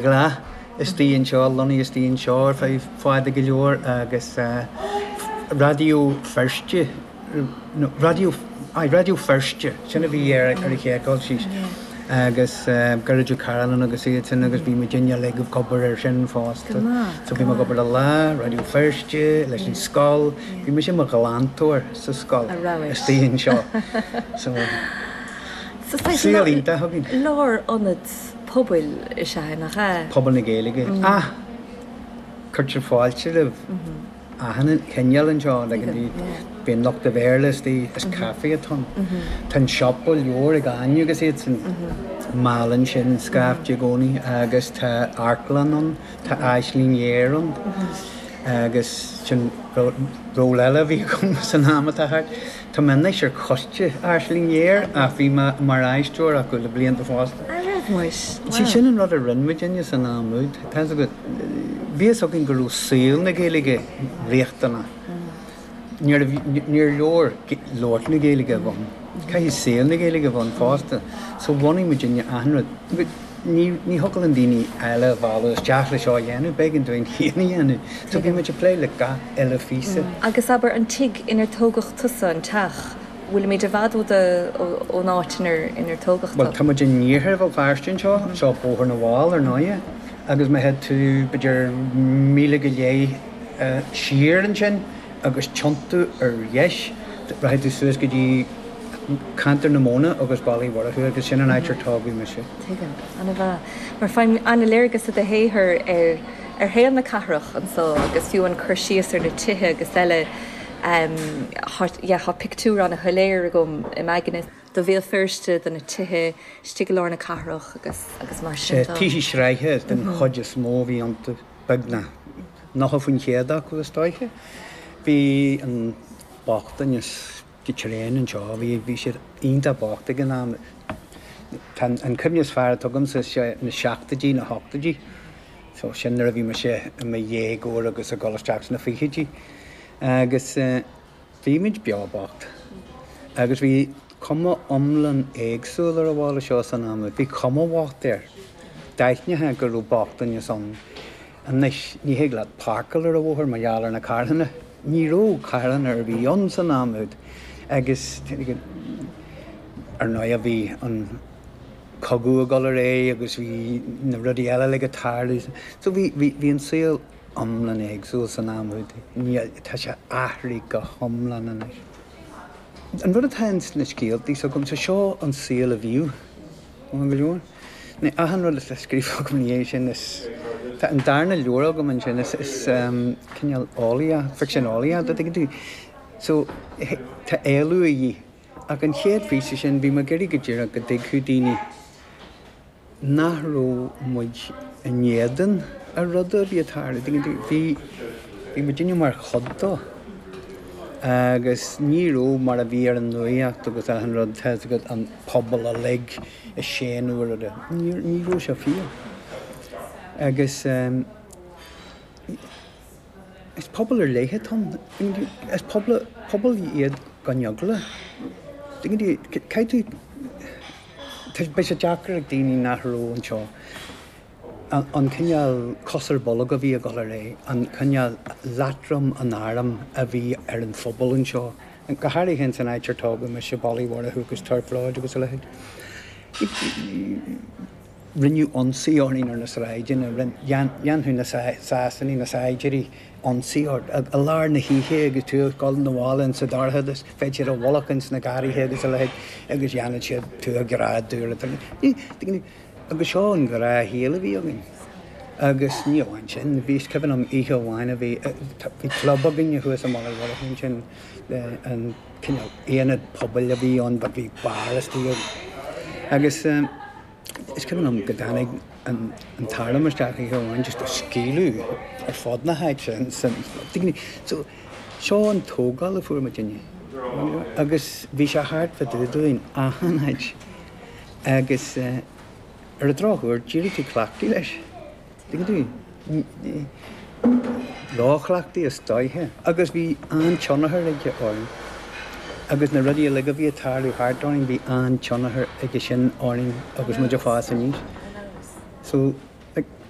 Lá istigh anseo, lonnaithe istigh anseo ar feadh fada go leor agus Raidió Feirste, raidió, aye, Raidió Feirste, sin a bhí ar siúl ag Gary agus Gearóid Ó Cairealláin agus iad sin agus bhí muidinne ag obair ar sin fosta. So bhí muid ag obair le Lá, Raidió Feirste, leis an scoil, bhí mise i mo ghlantóir sa scoil istigh anseo. So, saol iontach againn. Lár-ionad pobail is ea é, nach ea? pobal na Gaeilge ach cuirtear fáilte roimh achan chineál anseo, like bhí, bíonn lucht an Bhéarla istigh, is caifé atá ann, tá an siopa leabhar ag Áine agus iadsan, meallann sin scaifte i gcónaí agus tá amharclann ann, tá Aisling Ghéar ann agus sin ról eile a bhí agam san am atá thart. Tá mé anois ar choiste Aisling Ghéar ach bhí mé mar aisteoir acu le blianta fosta. All right, muis. Sea, sin an rud a rinne muidinne san am úd. Tá 'fhios agat, bhí 'fhios againn go raibh saol na Gaeilge riachtanach. Níor leor labhairt na Gaeilge a bhunú, caithfidh saol na Gaeilge a bhunú fosta. So bhunaigh muidinne achan rud. Ní thiocfadh linn daoine eile a mhealladh isteach le seo a dhéanamh, b'éigean dúinn féin é a dhéanamh. So bhí muid ag plé le gach uile phíosa. Agus abair, an tigh inar tógadh tusa, an teach, bhfuilimid i bhfad ón áit inar tógadh tú? Bhuel, tá muid in iarthar Bhéal Feirste anseo, seo Bóthar na bhFál, ar ndóigh, agus má théann tú b'fhéidir míle go leith siar ansin agus tiontú ar dheis, rachaidh tú suas go dtí, ceantar Bharr na Móna agus Baile Uí Mhurchú agus sin an áit ar tógadh mise. Tuigim. Ana mhaith. Mar faighim ana-léargas i do shaothar ar ar shaol na cathrach anso agus fiú an cur síos ar na tithe agus eile em tá yeah tá pictiúr ana shoiléir agam im aigne de Bhéal Feirste, de na tithe istigh i lár na cathrach agus agus mar sin de. Tithe sraithe den chuid is mó a bhí iontu, beagnach nocha faoin chéad acu is dóiche. Bhí an bochtaineas go tréan anseo. Bhí sé iontach bocht ag an am. Tá an cuimhne is fearr atá agamsa na seachtóidí, na hochtóidí. So, sin nuair a bhí mise i mo dhéagóir agus ag dul isteach sna fichidí. Agus bhí muid beo bocht. Agus bhí cuma iomlán éagsúil ar an bhaile seo san am. Bhí cuma bhocht air. D'aithneofá go raibh bochtaineas ann. Anois, ní thig leat páirceáil ar an bhóthar mar gheall ar na carranna. Ní raibh carranna ar bith ann san am úd agus, ar ndóigh, bhí an cogadh ag dul ar aghaidh agus bhí na rudaí eile like ag tarlú. So, bhí, bhí, bhí an saol iomlán éagsúil san am úd. Ní, tá sé athraithe go hiomlán anois. An rud atá ins na scéaltaí s'agamsa, seo an saol a bhíodh. Maith go leor. Ní achan rud atá scríofa agam ina dhiaidh sin is. Tá an darna leabhar agam ansin, is cineál eolaíocht, ficsean eolaíochta, a dtuigeann tú. So, tá éalú a dhíth. Ach an chéad phíosa sin, bhí mé ag iarraidh go díreach go dtuigfeadh daoine nach raibh muid in éadan a ruda a bhí ag tarlú, a dtuigeann tú. Bhí, bhí muidinne mar chuid dó. Agus ní raibh mar a bhí ar an nuaíocht agus achan rud, tá fhios agat, an. pobal uilig ag séanadh air. Ní raibh sé fíor. Agus is pobal ar leith atá ann. Is pobal iad gan eagla. Beidh sé deacair ag daoine nach raibh anseo an cineál cos ar bolg a bhí ag dul ar aghaidh, an cineál leatrom an airm a bhí ar an phobal anseo, go háirithe ins an áit ar tógadh mise, Baile Uí Mhurchú agus Turf Lodge agus a leithéid. Rinneadh ionsaí orainn ar na sráideanna, dhéanfadh na Sasanaigh, na saighdiúirí, ionsaí ort i lár na hoíche agus tú ag dul 'na bhaile ins an dorchadas, bheadh siad i bhfolach ins na garraithe agus a leithéid agus dhéanfadh siad tú a ghreadadh. Agus seo an gnáthshaol a bhí againn. Agus ní amháin sin, bhí, is cuimhin liom oíche amháin a bhí, bhí club againne thuas i mBaile Uí Mhurchú ansin, an cineál ionad pobail a bhí ann but bhí bar istigh ann. Agus is cuimhin liom go dtáinig an tArm isteach oíche amháin just ag scaoileadh ar fud na háite ansin. So, seo an tógáil a fuair muidinne. Agus bhí sé thart fá dtaobh dúinn, achan áit. Agus ar an drochuair, d'éirigh tú cleachtaithe leis, dtuigeann tú, róchleachtaithe is dóiche. Agus bhí an-tionchar aige orainn. Agus na rudaí uilig a bhí ag tarlú thart orainn, bhí an-tionchar aige sin orainn agus muid ag fás aníos. So, like,